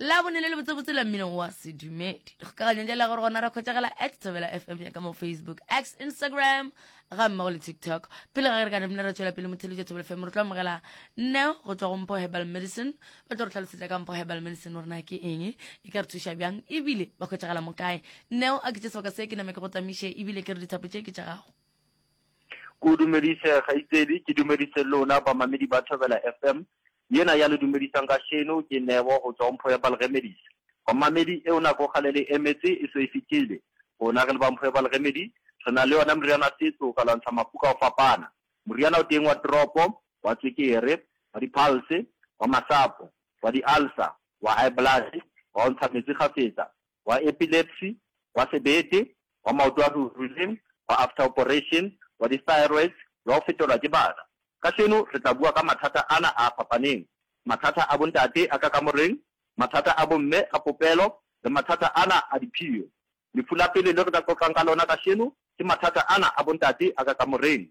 la bone le le botsebotse la mmino wa sedumedi le kgokaganyong ja la gore gona ra kgwetšagela at thobela fm ya ka mo facebook x instagram ga mmago le tiktok pele ga ge re ka namina re tswela pele mothelo ja thobela fm re tlo amogela neo go tswa go mpho herbal medicine ba tlo re tlhalosetsa ka mpho herbal medicine gore na ke eng e ka re thuša bjang ebile ba kgwetšagela mo kae neo a ke tše sebaka se ke name ke go tamiše ebile ke re dithapo tše ke tša gago ko dumedise kgaitsedi ke dumedise lona bamamedi ba thobela fm Yena ya le dumedisang kašeno ke Neo go tšwa go Mpho ya Balgemedis. Bamamedi, eo nako kgale le emetse e so e fetile. Rona re le ba Mpho ya Balgemedi, re na le yona meriana setso ka lwantsha mafu ka go fapana. Moriana o teng wa teropo, wa tswekere, wa diphalse, wa masapo, wa di-ulcer, wa high blood, wa go ntsha metsi kgafetsa, wa epilepsy, wa sebete, wa maoto a ruruileng, wa after operation, wa di-thyroids le wa go fetelwa ke bana. Kasheno re tla bua ka mathata ana a fapaneng, mathata a bontate a ka kamoreng, mathata a bomme a popelo le mathata ana a diphio. Lefu la pele le re ka qoqang ka lona kasheno ke mathata ana a bontate a ka kamoreng.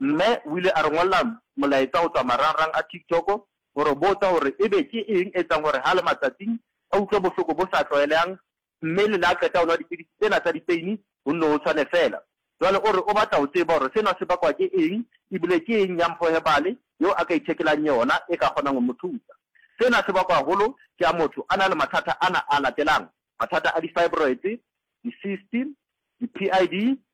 Mme o ile a re ngolla molaetsa go tšwa marangrang a TikTok go re botsa gore ebe ke eng e etsang gore ha a le matsatsing a utlwe bohloko bo sa tlwaelegang mme le le a qeta go nwa dipidisi tsena tsa dipeini go nno go tshwane feela. Jwale o re o batla go tseba gore sena se bakwa ke eng ebile ke eng ya mphohebale yeo a ka ithekelang yona e ka kgonang go mo thusa. Sena se bakwa haholo ke ha motho a na le mathata ana a latelang, mathata a di-fibroids, di-cyst, di-PID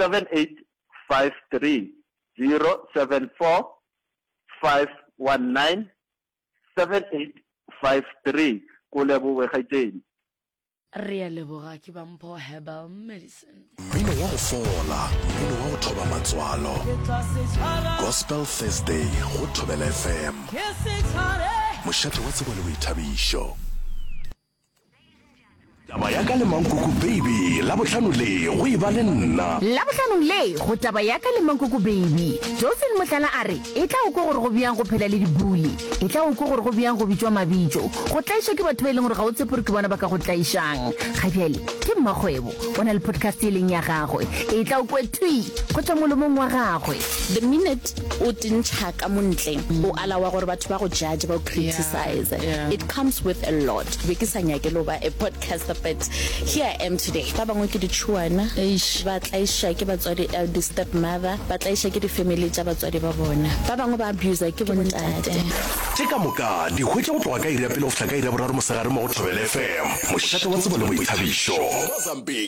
78530745197853 ko leboge kgaetšedi. Re a leboga ke ba mpho herbal medicine. Mmino wa go fola, mmino wa go thoba matswalo. Gospel Thursday go Thobela FM. Mošate wa tsebo le boithabišo. Taba ya ka le Mankoko Baby, Labohlano le go e ba le nna. Labohlanong le go Taba ya ka le Mankoko Baby, Josephine Mohlala a re e tla o kwe gore go bjang go phela le dibuli, e tla o kwe gore go bjang go bitšwa mabitso, go tlaišwa ke batho ba e leng gore ga o tshepe gore ke bona ba ka go tlaišang. Ga bjale ke mmakgwebo, o na le podcast e leng ya gagwe, e tla o kwe thwi go tšwa molomong wa gagwe. The minute o tentšha ka mo ntle, o ala wa gore batho ba go judge, ba go criticize yeah, yeah. it comes with a lot be ke sa nyake lo ba a podcaster but here i am today ba bangwe ke ditšhuana ba tlaiša ke batswadi uh, the step mother ba tlaiša ke di-family tša batswadi ba bona ba bangwe ba abusa ke bontate tše ka moka di hwetša go tloga ka iri ya pele go fihla ka iri ya boraro mosegare mo go thobele fm mošate wa tsebo le boithabišo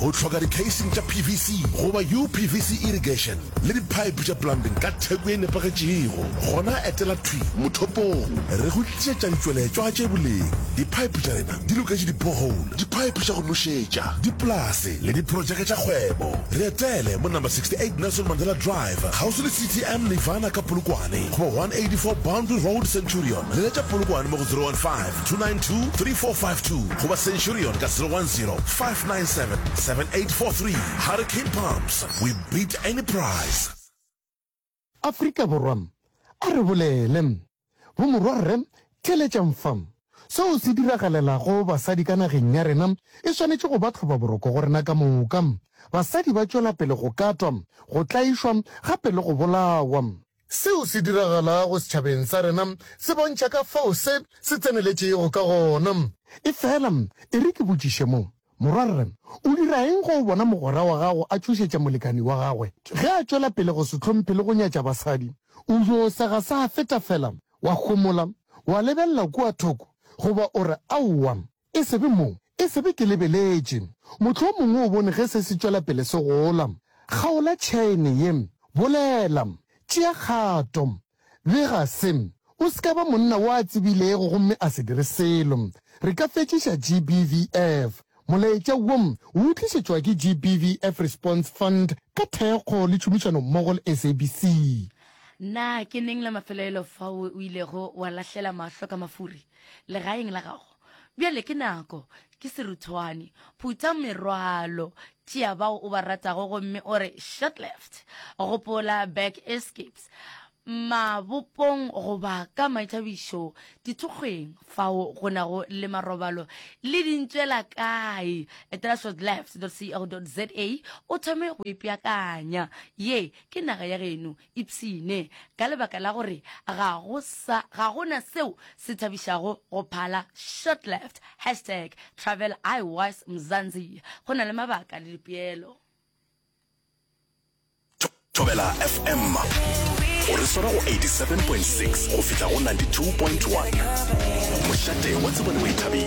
O tlhoka dikheising tša PVC goba UPVC irrigation le diphaephe tša plumbing ka theko e nepagetšego? Gona etela thwi mothopong re go tlišetša ditšweletšwa tše boleng. Diphaephe tša rena di loketše di-borehole, diphaephe tša go nošetša, dipolase le diprotšeke tša kgwebo. Re etele mo number 68 Nelson Mandela Drive, kgauswi le CTM Nirvana ka Polokwane, goba 184 Boundary Road, Centurion. Leletša Polokwane mo go 015 292 3452 goba centurion ka 010 597 7843 Hurricane Pumps, we beat any price. Afrika Borwa, a re bolele. Bomorwa Rre theeletšang fa. Seo se diragalelago basadi ka nageng ya rena e swanetše go ba tlhobaboroko go rena ka moka. Basadi ba tšwela pele go katwa, go tlaišwa gape le go bolawa. Seo se diragalago setšhabeng sa rena se bontšha ka fao se se tseneletšego ka gona. Efela e re ke botšiše mo, Morwarre, o dira eng ge o bona mogwera wa gago a tšhošetša molekani wa gagwe ge a tšwela pele go se hlomphe le go nyatša basadi? O yo sega sa feta fela, wa homola, wa lebelela kua thoko, goba o re, Aowa, E se be mo, e se be ke lebeletše. Mohlomongwe o bone ge se se tšwela pele se gola. Kgaola tšhaene ye. Bolela. Tšea kgato. Bega se. O se ka ba monna wo a tsebilego gomme a se dire selo. Re ka fetšiša GBVF. Molaetša wo o utlišetšwa ke GBVF Response Fund ka thekgo le tšhomišano mmogo le SABC. Na ke neng la mafelelo fao o ilego wa lahlela mahlo ka mafuri? Legaeng la gago. Bjale ke nako. Ke seruthwane. Phutha merwalo. Tšea bao o ba ratago gomme o re, Short-left. Gopola, back escapes. Mabopong goba ka maithabišo, dithokgweng, fao go nago le marobalo le dintšwela kae, etela shortleft.co.za o thome go ipeakanya. Ye ke naga ya geno. Ipshine, ka lebaka la gore ga go sa, ga go na seo se thabišago go phala Short Left, hashtag Travel I was Mzanzi, go na le mabaka le dipeelo. Thobela FM o re swara go 87.6 go fihla go 92.1 mošate wa tsebo le boithabišo.